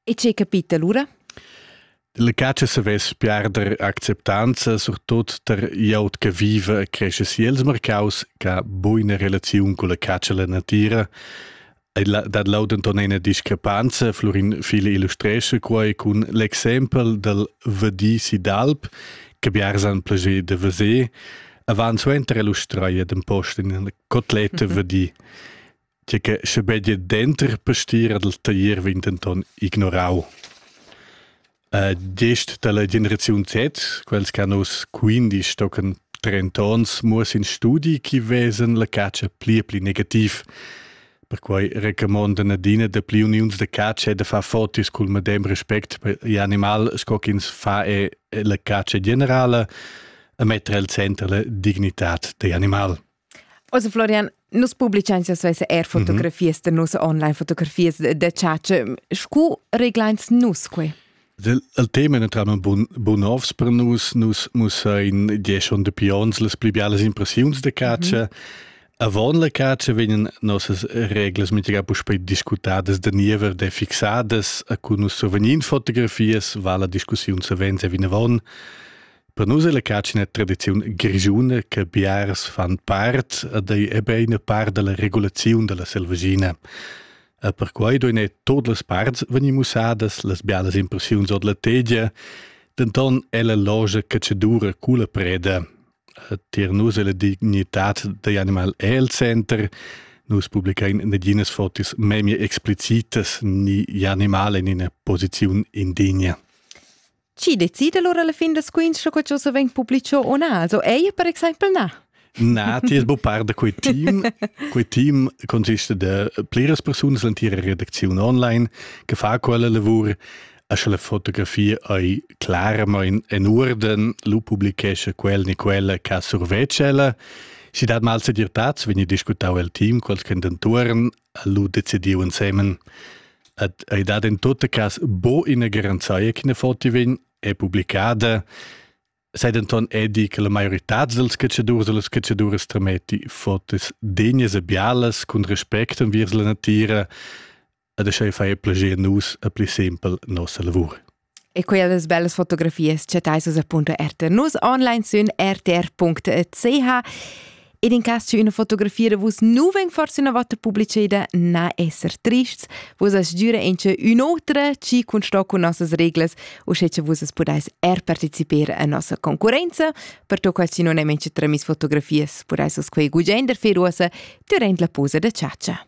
E che capita lura? La caccia savess piarder acceptanza, surtut tar glieud che viva e cresce si els marcaus, che buina relaziun con la caccia e la natira. Dat lau denton ina discrepanza, Florin File illustresce quai con l'exempel del Vadi Sidalp, che biarsan plager de veser, avant suenter illustreia den post in cotletta mhm. Vadi. tgei che schebegia denter pastiera dal taglier vegn denton ignorau. Uh, gest dalla generaziun Z, quels che hanno quindici tochen 30 ons muos in studi chi vesen la caccia pli e pli negativ. Perquai recommandon adina de pli uniuns de caccia e de far fotis cul medem respect per animal sco ch'ins fa e la caccia generale e metter al center la dignitat de animal. Also Florian, nus publicains ja svessa eir fotografias mm -hmm. da nus online, fotografias da chatscha. Scu reglains nus quai? Il tema è naturalmente bun, bun ovs per nus. Nus mussain die schon dapi ons las pli bialas impressiuns da caccia. Mm -hmm. Avant la caccia vegnan nossas reglas mintga puspei discutadas da niever de fixadas a cu nus survegnin fotografias, va la discussiun savens e vinavon. Per nus è la catschna tradiziun grischuna che biars fan part ed ei ebein part dalla regulaziun dalla selvaschina. E perquai duein ei tot las parts vegnir mussadas las bialas impressiuns ord la tegia, denton è la logia catschadura cula preda. Tier nus è la dignitad degl animal el center, Nus publichein naginas fotis memie explicitas ni animale in ina posiziun indigna. Chi decide lura la fin da squinch sco che se vegn publicho o na? Also ei per exempel na. Na, ti es bu par da quei team. Quei team consiste da pliras persunas l'entira redacziun online che fa quella lavur a sche la fotografia ei claramain en urden, lu publichesce quel ni quella che survegge ella. Si dat mal se dirtats, vegni discutau el team, quels che entuorn ha lu decidiu ensemen ad ei dat in tot cas bo ina garanzia che ne foti vegn è publicada sei denton edi che la maioritad dels catschadurs e las catchaduras trameti fotos degnas e bialas cun respect enviers la natira ad schei fai plager nus a pli sempel nossa lavur E quellas bellas fotografias chattais vus appunto RTR News online sün rtr.ch ed in cas c'è una fotografia vus nu ven forse una volta pubblicida na esser trists vus as giura in c'è un'otra ci cun sto con nossas reglas u sche che vus as pudais er partecipare a nostra concorrenza per to quasi non è mentre tramis fotografias pudais us quei gugender feruosa durant la posa da ciaccia